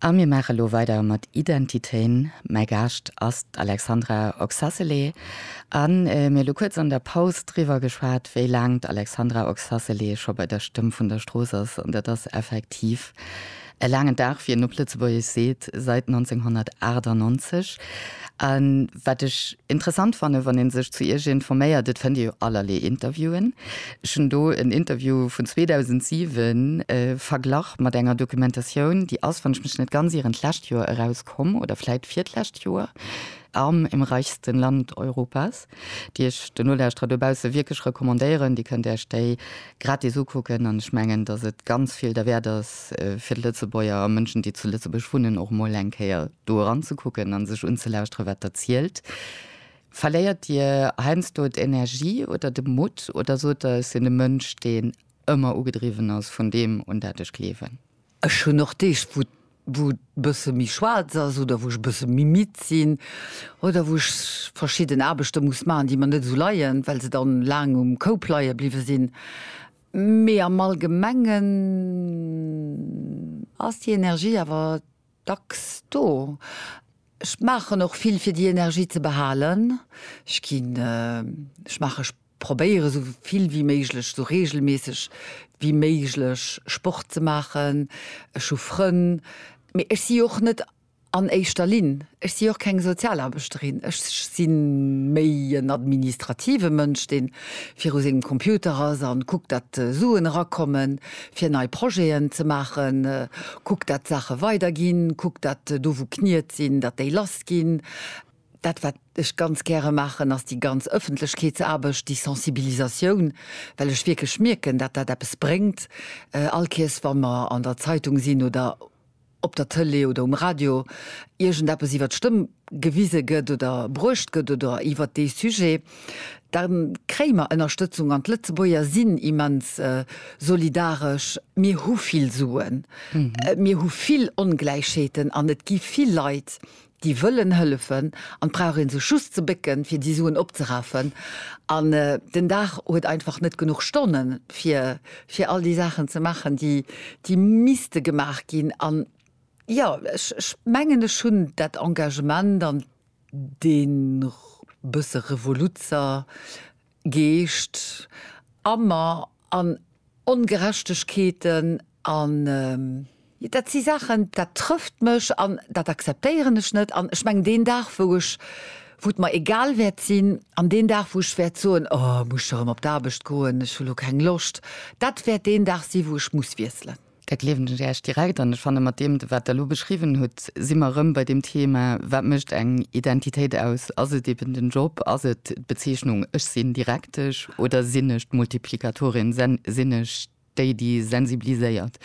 A mir maache lo weider mat Identitéen. Mäi Gaascht ass d'Alexandra Oxacelé a mir hu lo kuerz an der Paus driwwer geschwat, wéi laang d'Alexandra Oxacelé scho bei der Stëmm vun der Strooss ass. An dat ass effektiv e laangen Dag, wéi een op Lëtzebuergesch seet, seit 1998. Wat ech interessant fannen, wann ee sech zu Iech informéiert, et fënnt ee jo allerlee Interviewen. Ech hunn do en Interview vun 2007 verglach mat enger Dokumentatioun, déi ass, wann ech mech net ganz ieren, d'lescht Joer erauskomm oder vläit virdlescht Joer, Arm im reichsten Land Europas, déi ech de Nolauschterer dobausse wierklech recommandéieren. Dir kënnt Iech déi gratis ukucken an ech mengen, dass et ganz vill derwäert ass, fir d'Lëtzebuerger a Mënschen, déi zu Lëtzebuerg wunnen, och emol eng Kéier do eranzekucken a sech unzelauschtere wat Der zielt, verléiert Dir heiansdo d'Energie oder de Mutt oder sot Der, ech sinn e Mënsch deen ëmmer ugedriwwen ass vun deem un dat ech gleewen? Ech hunn och Deeg wou wou et e bësse méi schwaarz ass oder wou ech e bësse méi midd sinn oder wou ech verschidden Aarbechte muss maachen déi mer net esou leien, well se dann laang um Koup leie bliwwe sinn, mee am Allgemengen ass déi Energie awer dacks do. Ech maachen och vill fir déi Energie ze behalen. Ech ginn, ech maachen, ech probéieren esou vill wéi méiglech, esou reegelméisseg wéi méiglech Sport ze maachen. Ech hu Frënn, mee ech si och net an éischter Linn, ech si och keng Sozialaarbechterin, ech si méi en administrative Mënsch, dee viru sengem Computer ass a kuckt, datt Suen erakommen. fir nei Projeten ze maachen, kuckt dat d'Saache weider ginn, kuckt dat do wou Kniet sinn, dat déi lass ginn. Dat wat ech ganz gäre maachen ass déi ganz Ëffentlechkeetsaarbecht, déi Sensibilisatioun, well ech wierklech mierken dat dat eppes bréngt. All Kéiers wa mer an der Zeitung sinn oder op der Tëlee oder um Radio iergendeppes iwwer d'Stëmm gewise gëtt oder bruecht gëtt oder iwwer dee Sujet, da kréie mer Ënnerstëtzung an d'Lëtzebuerger sinn immens solidaresch. Mir hu vill Suen, mir hu vill Ongläichheeten an et gi vill Leit, Déi wëllen hëllefen an et brauch ee sech just ze bécken, fir déi Suen opzerafen. An den Dag huet einfach net genuch Stonnen, fir, fir all déi Saachen ze maachen, déi, déi misste gemaach ginn. An jo, ech, ech mengen, ech hunn dat Engagement an dee bësse Revoluzzer Geescht ammer an Ongerechtegkeeten an. Dat si Saachen, dat trëfft mech an dat akzeptéieren ech net. An ech mengen, deen Dag, wou ech, wou et mer egal wäert sinn, an deen Dag, wou ech wäert soen, Oh, muss ech erëm op d'Aarbecht goen, ech hu lo keng Loscht, dat wäert deen Dag si wou ech muss wiesselen. Da gleewen ech Äech direkt. An ech fannen, mat deem, wat Der elo beschriwwen hutt, si mer erëm bei deem Thema, Wat mécht eng Identitéit aus? Ass et eben den Job? Ass et d'Bezeechnung, Ech sinn Direktesch oder sinn ech d'Multiplikatorin? Sinn ech déi, déi sensibiliséiert?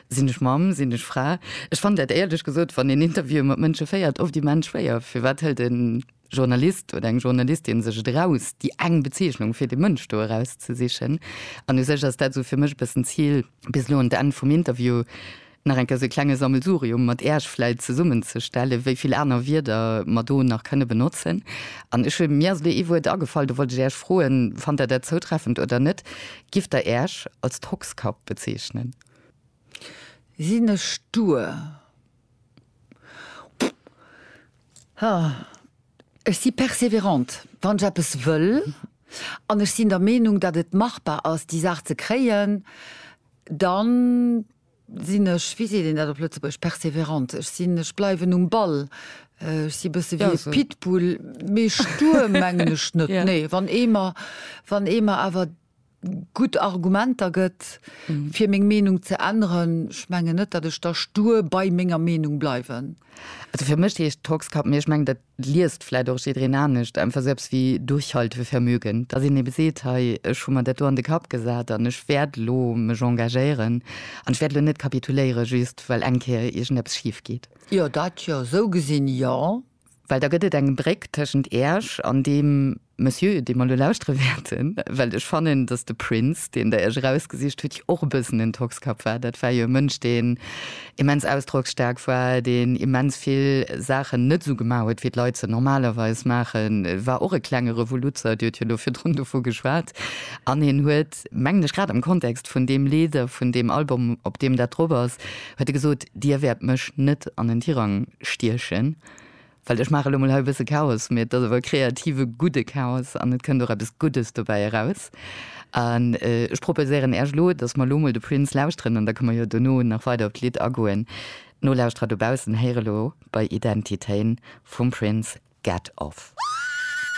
Sinn ech Mamm? Sinn ech Fra? Ech fannen dat, éierlech gesot, wann een Interviewen mat Mënsche féiert, oft immens schwéier. Firwat hëlt en Journalist oder eng Journalistin sech et eraus, déi eng Bezeechnung fir dee Mënsch do erauszesichen. An u sech ass dat esou fir mech e bëssen d'Zil, bis elo un d'Enn vum Interview nach eng Kéier esou e klenge Sammelsurium mat Iech vläicht zesummenzestellen, wéi vill aner Wierder mer do nach kënne benotzen. An ech hunn, mir ass elo ee Wuert agefall, do wollt ech Iech froen, fannt Der dat zoutreffend oder net, Gift Der Iech als Tockskapp bezeechnen? Sinn ech stur? Ech si perseverant, wann ech eppes wëll, an ech sinn der Meenung, datt et machbar ass, déi Saach ze kréien, da sinn ech, wéi seet een dat op Lëtzebuergesch, perseverant, ech sinn, ech bleiwen um Ball, ech si e bësse wéi e Pitbull, mee stur mengen ech net, nee. Wann ee mer, wann ee mer awer gutt Argumenter gëtt, fir meng Meenung ze änneren. Ech mengen net, datt ech da stur bei menger Meenung bleiwen. Also fir mech heescht Tockskapp, mee ech mengen, dat liest vläit och jiddwereen anescht, einfach sou eppes wéi Durchhaltevermögen. Datt een ebe seet, hei, ech hu mer dat do an de Kapp gesat an ech wäert elo mech engagéieren an ech wäert elo net kapituléieren, just well eng Kéier iergendeppes schif geet. Jo, dat jo. Sou gesinn, jo. Well da gëtt et eng Bréck tëschent Iech an deem Monsieur, dee mer elo lauschtere wäerten. Well ech fannen, datt de Prince, deen Der Iech erausgesicht hutt, jo och e bëssen en Tockskapp war. Dat war jo e Mënsch, deen immens ausdrocksstaark war, deen immens vill Saachen net esou gemaach huet, wéi d'Leit se normalerweis maachen. E war och e klenge Revoluzzer, Dir hutt jo elo virdrun dovu geschwat. An hien huet. huet, mengen ech, grad am Kontext vun deem Lidd a vun deem Album, op deem dat drop ass, huet e gesot, Dir wäert mech net an den Tirang stiechen, well ech maache lo mol hei e bësse Chaos, mee et ass awer e kreative, gudde Chaos an et kënnt och eppes Guddes dobäi eraus. An ech proposéieren Äech elo, dass mer elo mol de Prince lauschteren an da kënne mer jo dono nach weider op d'Lidd agoen. Nolauschterer dobaussen héiere lo bei Identitéen vum Prince Get Off.